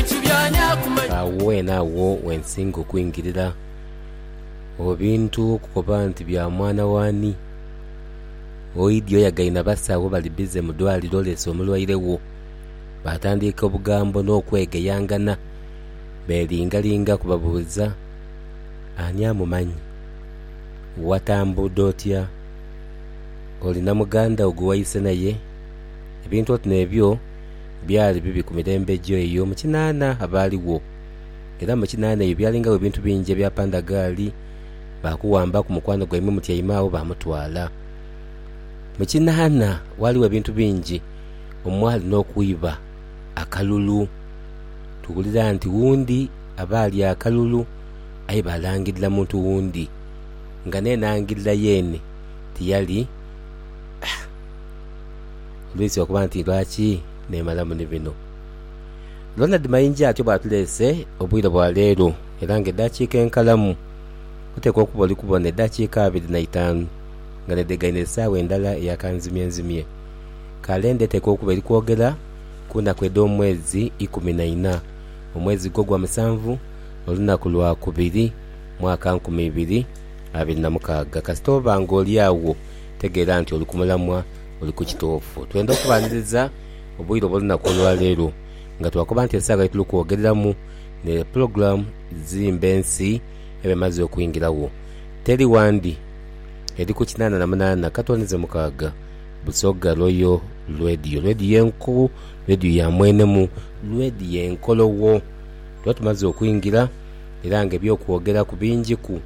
Agho weene agho wensinga okwingirira. Obwo bintu okukoba nti bya mwana w'ani? Oidhi oyagaine abasawo bali bize mu dwaliro oleese omulwaire wo. Baatandiika obugambo n'okwegeyangana beelingalinga kubabuuza ani amumanyi. Watambuuda otya? Olina muganda wo gwe waise naye? Ebintu oti n'ebyo. Byali bibi ku mirembe egyo eyo mu kinaana abaaligho. Era mu kinaana eyo byalingawo ebintu bingi ebya pandagaali. Baakuwambaku mukwano gwaimwe mutyaime agho baamutwala. Mu kinaana ghaligho ebintu bingi omwali n'okwiba akalulu. Tuwulira nti wundi aba alya akalulu aye baalangirira muntu wundi, nga n'enangirira yeene tiyali. Ndwise okuba nti lwaki neemalamu ni bino. Ronald Mayinja atyo bw'atuleese obwire bwa leero era nga edaakiika enkalamu oteekwa okuba oli kubona edaakiika abiri na itaanu nga n'edhegaine esaawa endala eya kanzimyenzimye. Kalenda eteekwa okuba eri kwogera ku naku edh'omwezi ikumi na ina, omwezi gwo gwa musanvu, olunaku lwa kubiri, mwaka nkumi ibiri abiri na mukaaga. Kasita oba nga oli agho tegeera nti oli ku mulamwa. Oli ku kituufu. Twendha okubanhiriza obwire obw'olunaku olwaleero nga twakoba nti esaawa yetuli kwogereramu ni Pulogulamu Zimba Ensi eba emaze okwingiragho. Teri wandi eri ku kinaana na munaana katoni ze mukaaga Busoga Royal Radio. Radio enku, radio ya mwenemu, radio enkologho. Tuba tumaze okwingira era nga eby'okwogeraku bingiku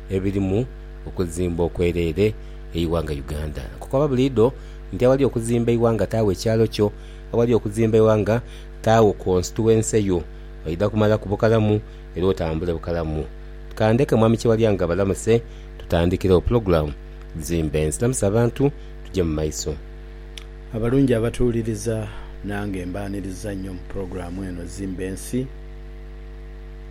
ebirimu okuzimba okwereere eighanga Uganda. Nkukoba buliidho nti aghali okuzimba eighanga taagho ekyalo kyo, aghali okuzimba eighanga taagho constituency yo. Oidha kumalaku bukalamu era otambule bukalamu. Kandheke Mwami Kyewalyanga abalamuse tutandhikiregho pulogulamu Zimba Ensi. Lamusa abantu tugye mu maiso. Abalungi abatuwuliriza, nange mbaaniriza nnyo mu pulogulamu eno Zimba Ensi.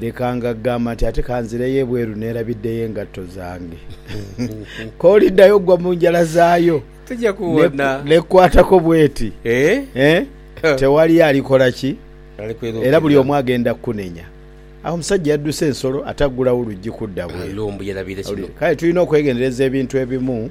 Leka nga ghamba nti ate ka nzireyo ebweru neerabiddeyo engatto zange. K'oliddayo ogwa mu njala zaayo n'ekukwatako bw'eti, tewali alikola ki? Era buli omu agenda kukunenya. Agho omusajja yadduse ensolo ate aggulawo oluggi kudda bweru. Kale tulina okwegendereza ebintu ebimu.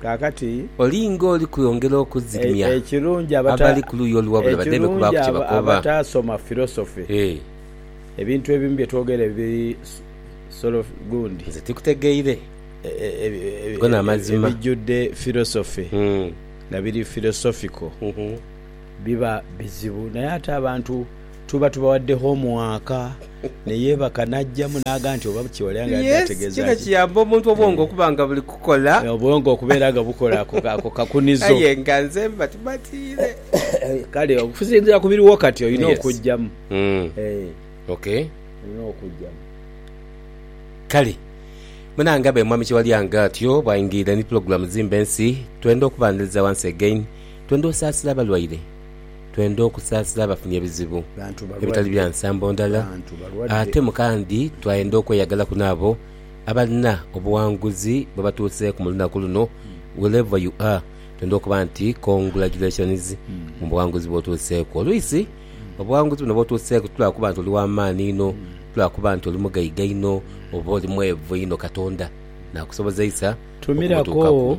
Kaakati, olinga oli kwongera okuzigmya abali ku luuyi oluwabula badheeme kubaaku kye bakoba. Ekirungi abataasoma filosofi, ebintu ebimu bye twogera ebiri solo gundi. Nze tikutegeire go n'amazima. Ebijjudde filosofi nga biri philosophical. biba bizibu naye ate abantu tuba tubawadde homuwaaka neyeebaka n'aggyamu n'agamba nti oba kye yali abadde ategeeza ki. Yes, kino kiyamba omuntu obwongo okuba nga buli kukola. Obwongo okubeera nga bukola ako kakunizo. Aye nga nze mba tumatiire. Kale okusinziira ku biriwo kati olina okuggyamu. Ok. Olina okuggyamu. Kale munange abe Mwami Kyewalyanga atyo bwaingirira ni pulogulamu Zimba Ensi, twenda okubaniriza once again. Twendha osaasira abalwaire, twendha okusaasira abafunye ebizibu ebitali bya nsambo ndala, ate mu kandi twayendha okweyagalaku n'abo abalina obuwanguzi bwe batuuseeku mu lunaku luno, wherever you are, twendha okuba nti congratulations mu buwanguzi bw'otuuseeku. Olwisi obuwanguzi buno bw'otuuseeku ti lwa kuba nti oli wa maani inho, ti lwa kuba nti oli mugaiga inho oba oli mweevu inho, Katonda naakusobozeisa okubutuukaku.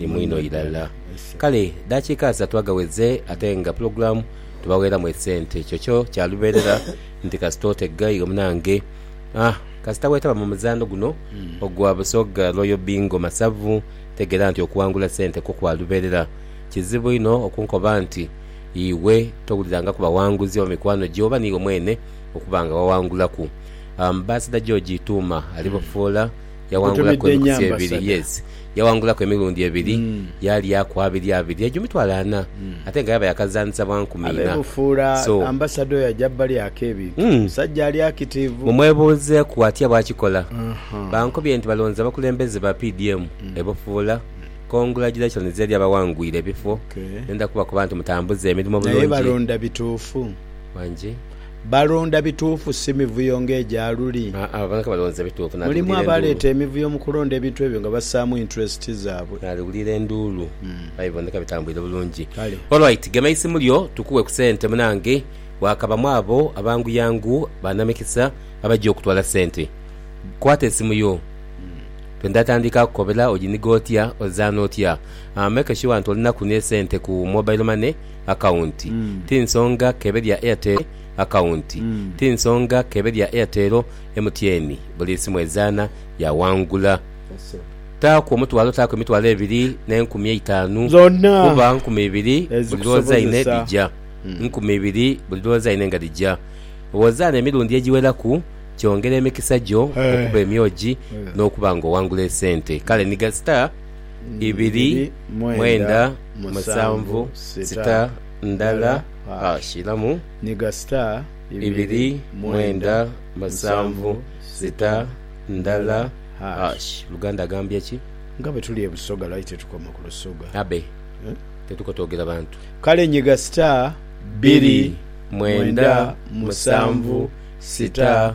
ni mwinho irala. Kale dakiika asatu aghaweze ate nga pulogulaamu tubaweeramu esente. Kyokyo kya lubeerera nti kasita otega iwe munange aah kasita weetaba mu muzaano guno ogwa Busoga Royal Bingo Masavu tegeera nti okuwangula sente kwo kwa lubeerera. Kizibu inho okunkoba nti iwe towulirangaku bawanguzi oba mikwano gyo oba niiwe mwene okuba nga wawangulaku. Ambassador George Ituuma ali Bufoola. Yawangulaku Otumidde nnyo emikutu ebiri, ambasada. yes. Yawangulaku emirundi ebiri, yaalyaku abiri abiri, egyo mitwalo ana, ate nga yaaba yaakazanhisa bwa nkumi Abe ina. bufuula So, ambasada oyo aja balyaku ebintu. Mm. Musajja ali akitiivu. mumwebuuzeeku atya bw'akikola. Aha. Bankobye nti balonze abakulembeze ba PDM e Bufuula. Congratulations eri abawangwire ebifo. Okay. Ndenda kubakoba nti mutambuze emirimo Naye bulungi. balonda bituufu? Wangi. Balonda bituufu si mivuyo ng'egya luli. Abo bonka balonze bituufu. Mulimu abaleeta emivuyo mu kulonda ebintu ebyo nga bassaamu interest zaabwe. Naaliwulira enduulu aye biboneka bitambwire bulungi. Kale. Alright gema eisimu lyo tukuwe ku sente munange wakabamu abo abanguyangu ba namikisa abajja okutwala sente. Kwata esimu yo to ndatandika kukobera ojiniga otya ozaana otya make sure nti olinaku ne sente ku mobile money. akawunti ti nsonga k'ebe lya Airtel akawunti ti nsonga k'ebe lya Airtel MTN buli simu ezaana yaawangula. Taaku omutwalo taaku emitwalo ebiri n'enkumi eitaanu kuba nkumi ibiri buli lw'ozaine dhija. Nkumi ibiri buli lw'ozaine nga dhija. Bw'ozaana emirundi egiweraku kyongera emikisa gyo okuba emyogi n'okuba ng'owangula esente. Kale nhiga star. ibiri mwenda musanvu sita ndala ha shiramu ibiri mwenda musanvu sita ndala hash Luganda agambye ki? Nga bwe tuli e Busoga lwaki tetukoma ku Lusoga? Abe. Tetuko twogera bantu. Kale nyiga sita bbiri mwenda musanvu sita.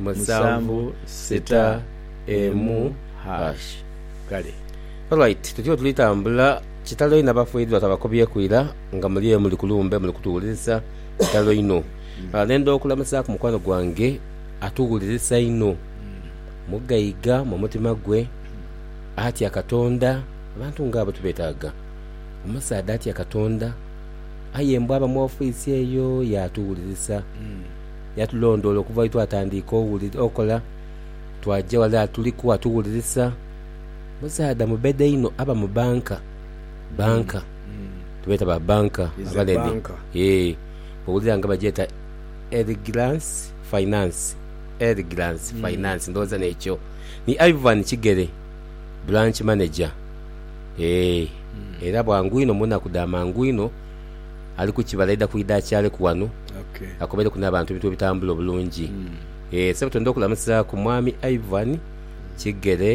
musanvu sita emu hash. Kale. Alright tutyoo tuli tambula kitalo inho abafiridwa twabakubyeku ira nga muli eyo muli kulumbe muli kutuwulirisa kitalo inho nendha okulamusaku mukwano gwange atuwulirisa inho mugaiga mumutima gwe atya katonda abantu nga abo tubetaga omusaadha atya katonda aye mbu aba mu office eyo yatuwulirisa yatulondoola okuva lwe twatandiika okola, twaja ghale atuliku atuwulirisa. Musaadha mubedha inho aba mu banka, banka, tubeeta ba banka abanene, ee, owulira nga bagyeta Elgirance Finance, Elgirance Finance, ndhowooza n'ekyo. Ni Ivan Kigere, branch manager, ee, era bwangu inho mu naku dha mangu inho. ali ku kibala aidha kwidha akyaleku ghano akobeleku n'abantu ebintu bwe bitambula obulungi. Eeh Ssebutondo okulamusaaku Mwami Ivan Kigere.